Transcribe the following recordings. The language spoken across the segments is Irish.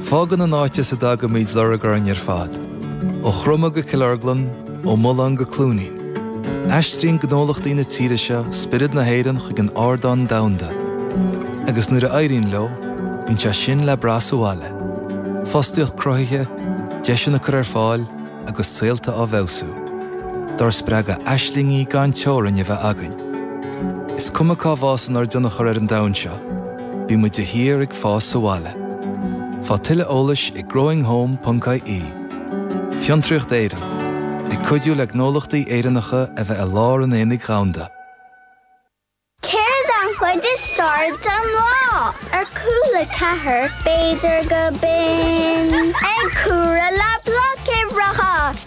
Fágann an áit as a dtagaimíd lorg orainn ar fad, ó Chroma go Cill Orglan, ó Mullán go Cluainín. Aistríonn gnólachtaí na tíre seo spiorad na hÉireann chuig an ardán domhanda. Agus nuair a éiríonn leo, bíonn sé sin le brath sa bhaile. Fostaíocht cruthaithe, deiseanna á gcur ar fáil agus saolta á bhfeabhsú. Dár spreagadh aislingí gan teorainn a bheith againn. Is cuma cá bhfásann ár dtionchar ar an domhan seo. Bíonn muid de shíor ag fás sa bhaile. Faigh tuilleadh eolais ag growinghome.ie. Fiontraíocht Éireann, ag cuidiú le gnólachtaí Éireannacha a bheith i lár an aonaigh go domhanda. Céard an chuid is fearr den lá? Ar cúl a ceathair, b'fhéidir go binn. Ag cúradh le bloicéireacha.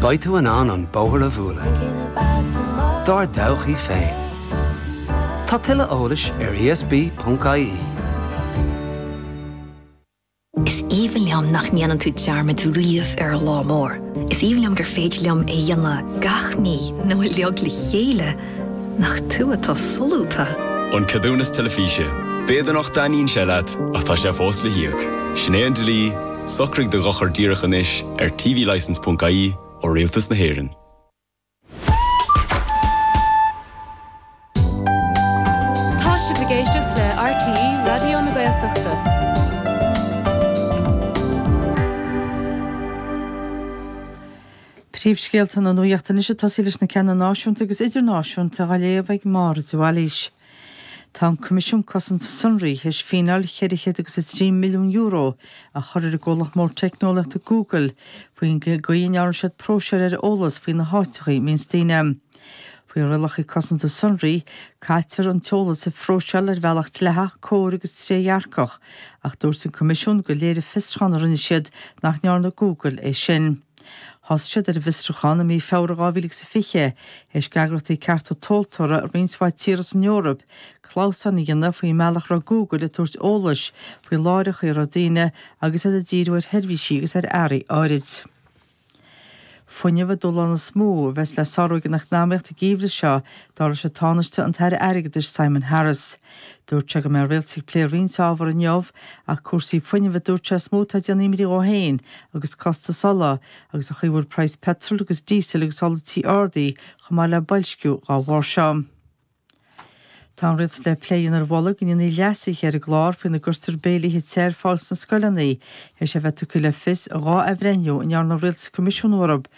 Beidh tú in ann an bóthar a bhualadh dár dtodhchaí féin. Tá tuilleadh eolais ar ESB.ie. Is aoibhinn liom nach ndéanann tú dearmad riamh ar an lá mór. Is aoibhinn liom gur féidir liom é dhéanamh gach mí nó uilig le chéile, nach tú atá solúbtha. An Ceadúnas Teilifíse, B'fhéidir nach dtaitníonn sé leat, ach tá sé fós le híoc. Sin é an dlí. Socraigh do dhochar díreach anois ar tvlicence ponc ie ó Rialtas na hÉireann. Tá sibh ag éisteacht le RTÉ Raidió na Gaeltachta. Príomhscéalta na Nuachta anois ag tosaí leis na cinn náisiúnta agus idirnáisiúnta á léamh ag Máire de Bhailís. Tá an Coimisiún Cosanta Sonraí théis fíneáil €403 milliún a chur ar an gcomhlacht mór teicneolaíochta Google faoin gcaoi a ndearna siad próiseáil ar eolas faoi na háiteachaí a mbíonn daoine. Faoi rialachaí cosanta sonraí, caitear an t-eolas a phróiseáil ar bhealach dleathach, cóir agus trédhearcach, ach dúirt an Coimisiún gur léirigh fiosrúchán a rinne siad nach ndearna Google é sin. Thosaigh siad ar an bhfiosrúchán i mí Feabhra 2020, théis d'eagraíochtaí cearta tomhaltóirí i roinnt mhaith tír as an Eoraip, clamhsán a dhéanamh faoin mbealach a raibh Google ag tabhairt eolais faoi láithreacha a raibh daoine agus iad ag díriú ar sheirbhísí agus ar earraí áirid. Fuinneamh an dúshlán is mó a bheas le sárú ag an eacnamaíocht an geimhreadh seo, dar leis an Tánaiste an tAire Airgeadais Simon Harris. Dúirt sé go mbeidh an Rialtas ag plé roinnt ábhar inniu, ach cúrsaí fuinnimh a dúirt sé is mó atá ag déanamh imní dhó féin, agus costas ola, agus an chaoi a bhfuil praghas peitril agus díosail agus ola tí ardaithe chomh maith le boilsciú dhá bharr seo. Tá an Rialtas le plé a dhéanamh ar mholadh go ndéanfaí leasuithe ar an gclár faoina gcuirtear béilíthe te ar fáil sna scoileanna, théis a bheith tugtha le fios dhá athbhreithniú a ndearna an Rialtas coimisiúnú orthu,